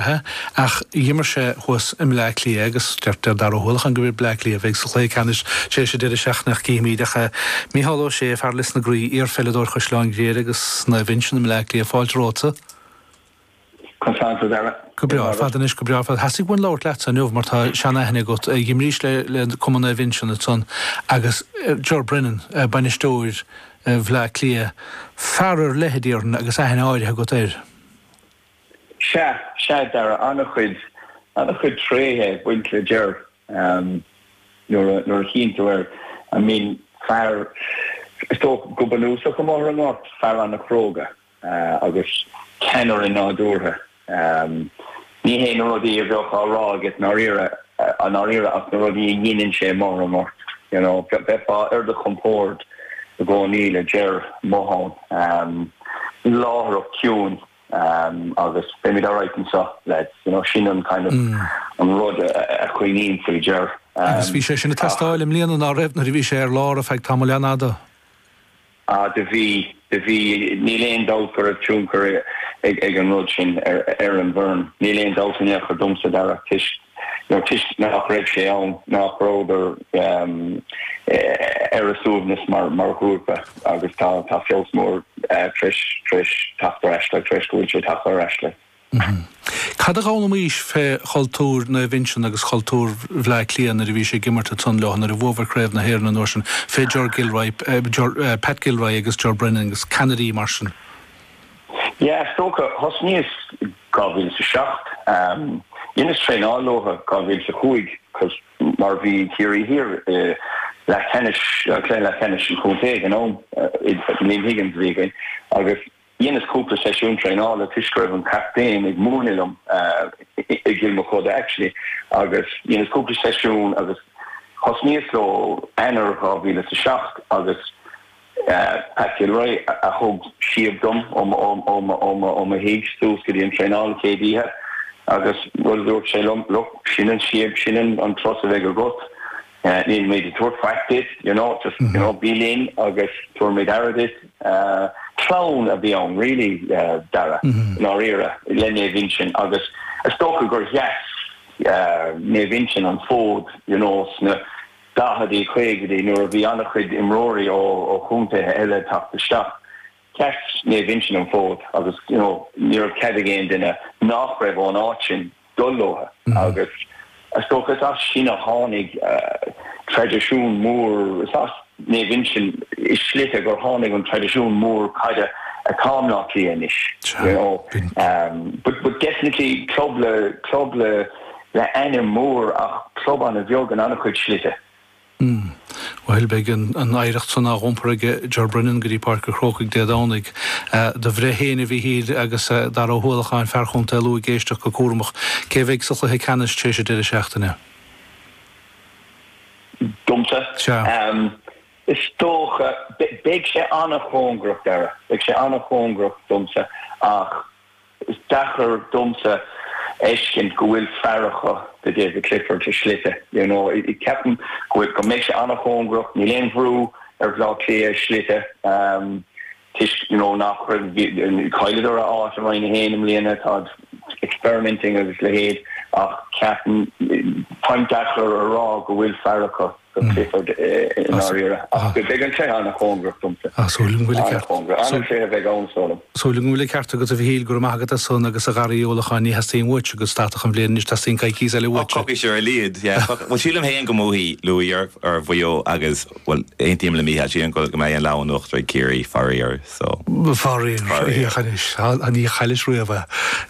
Ach dh'imir sé thuas i mBleá Cliath agus deir Dara Ó hUallacháin gurb iad Bleá Cliath a bheidh sa chluiche ceannais tar éis an deireadh seachtaine ach cífimíd. Ach Micheál Ó Sé, fear Lios na gCraobh, iarpheileadóir Chaisleán Ghriaire agus Naomh Uinseann i mBleá Cliath, fáilte romhatsa. Conas tánn tú Dara. Go breá ar fad anois, go breá ar fad. Theastaigh uainn labhairt leatsa inniu mar tá seanaithne agat, dh'imrís le Cumann Naomh Uinseann ansan agus Ger Brennan, bainisteoir Bhleá Cliath, fear ar leith a déarfainn agus aithne áirithe agat air. Sea, sea, Dara, an-chuid, an-chuid tréithe ag baint le Ger, nuair a, nuair a chuimhníonn tú air. I mean, fear, is dócha, go bunúsach, amuigh ar an ngort, fear an-chróga agus ceannaire nádúrtha. Ní hé na rudaí a bheadh á rá aige, ndáiríre, i ndáiríre, ach na rudaí a dheineann sé amuigh ar an ngort, you know, bheifeá ar do chompord i gcónaí le Ger, i mo thóin. Láithreacht chiúin. agus beimid alright annso, lads. You know, sin an kind of an rud a chuimhním faoi Ger. Agus bhí sé sin ag teastáil i mbliana ná raibh nuair a bhí sé ar lár a' feadh tamaill an-fhada? Ah, do bhí, do bhí. Níl aon dabht go raibh tionchar ag an rud sin ar an bhfoireann. Níl aon dabht in aon chor domsa, Dara, toisc nó toisc nách raibh sé ann, nách rabhadar ar a suaimhneas mar ghrúpa agus tá feabhas mór tréis teacht ar ais leo, tréis go bhfuil sé tagtha ar ais leo. Cad a dh'fhoghlaimís fé chultúr Naomh Uinseann agus chultúr Bhleá Cliath nuair a bhís ag imirt isteach leo, nuair a bhuabhair Craobh na hÉireann an uair sin fé Ger Gilroy, Pat Gilroy agus Ger Brennan agus ceannairí mar sin? Yeah, is dócha. Thosnaíos 2007. Dheineas traenáil leo 2005 cos mar bhí Ciarraí Thiar i leathcheannais, cluiche leathcheannais an chontae againn ó, Liam Higgins a bhí againn agus dheineas cúpla seisiún traenála toisc go raibh an captaen ag múineadh liom i gCill Mochuda actually agus dheineas cúpla seisiún agus thosnaíos leo Eanáir 2007 agus. Pat Gilroy a thug síob dom ó mo thigh suas go dtí an traenáil céad oíche agus rud a dúirt sé liom, look, sin an síob, sin an costas a bheidh agat, nílimid ag tabhairt faic duit, you know, just, you know, bí linn agus tabharfaimid aire duit. Clann a bhí ann really, Dara, i ndáiríre, le Naomh Uinseann agus is dócha gur sheas Naomh Uinseann an fód, you know, sna. 40idí, 50idí nuair a bhí an-chuid imreoirí ó chontaetha eile ag teacht isteach, sheas Naomh Uinseann an fód agus you know ní raibh cead ag aon duine nách raibh ón áit sin dul leo agus is dócha is as sin a tháinig traidisiún mór, is as Naomh Uinseann i slite gur tháinig an traidisiún mór caide atá in Áth Cliath anois you know but definitely club le le ainm mór ach club an-bheag in an-chuid slite. Umm. Bhuel, beidh an oidhreacht san á dh'iompar ag Ger Brennan go dtí Páirc an Chrócaigh Dé Domhnaigh. Do bhreith féin, a Mhíchíl, agus Dara Ó hUallacháin, fear Chontae Lú ag éisteacht go cúramach. Cé a bheidh sa chluiche ceannais tar éis an deireadh seachtaine? Domsa? Sea. Is dócha, beidh sé an-chóngarach, Dara. Beidh sé an-chóngarach domsa ach. Is deacair domsa fheiscint go bhfuil fear acu do David Clifford i slite, you know. Ceapaim go mbeidh sé an-chóngarach. Níl aon bhrú ar Bhleá Cliath i slite toisc, you know, nach raibh, chailleadar a áit i Roinn a hAon i mbliana. Táid experimenting agus leithéid ach ceapaim, táim deacair a rá go bhfuil fear acu. do Clifford i ndáiríre. Ach beidh an cluiche an-chóngarach domsa. Ach súil agam go bhfuil an ceart. An-chóngarach. An-tréith a bheidh ann, sula. Súil agam go bhfuil an ceart agat, a Mhichíl. Go raibh maith agat as san agus a Dhara Uí Uallacháin. Ní theastaíonn uaitse go stadfadh an bhliain anois, teastaíonn coicíos eile uaitse. Coicís ar a laghad, yeah. Bhuel, sílim féin go mbuafaidh Lú ar Mhaigh Eo agus, bhuel, aontaím le Micheál. Sílim go mbeidh an lámh in uachtar ag Ciarraí, faraor. So. Faraoir, féach anois, ní chaillis riamh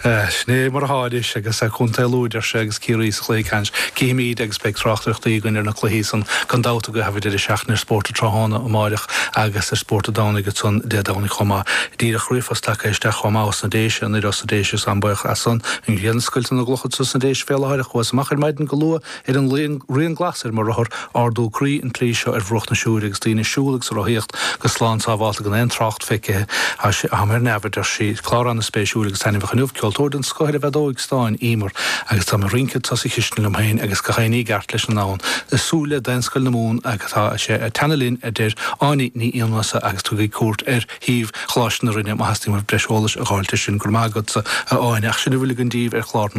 é. Sin é mar atá anois agus Contae Lú, a deir sé, agus Ciarraí sa chluiche ceannais. Cífimíd agus beidh tráchtaireachtaí againn ar na cluichí san gan dabht agaibh thar an deireadh seachtaine ar Spórt an tráthnóna amáireach agus ar Spórt an Domhnaigh ansan Dé Domhnaigh chomh maith. Díreach ríomhphost tagtha isteach chomh maith ós na Déise anoir ós na Déise is táim baoch as san an ghrian ag scoilteadh na gclocha sna Déise fé láthair, chuas amach ar maidin go luath Ar an rian glas ar mo rothar, ardú croí an tslí seo ar bhruach na Siúire agus daoine ag siúl agus ag rothaíocht go slán sábhálta gan aon trácht feicthe agham, ar neamh, a deir sí. Clár an-spéisiúil agus taitneamhach inniu, ceoltóir den scoth ar an bhfeadóig stáin, Emer, agus tá mé ag rince thart sa chistin liom féin agus gach aon ní i gceart leis an ndomhan, ag súil le Daonscoil na Mumhan agus tá sé ag teannadh linn, a deir Áine Ní Fhiannusa agus tugaigí cuairt ar shuíomh Choláiste na Rinne má theastaíonn uaibh breis eolais a dh'fháilt air sin. Go raibh maith agatsa, a Áine, ach sin a bhfuil againn díbh ar chlár na.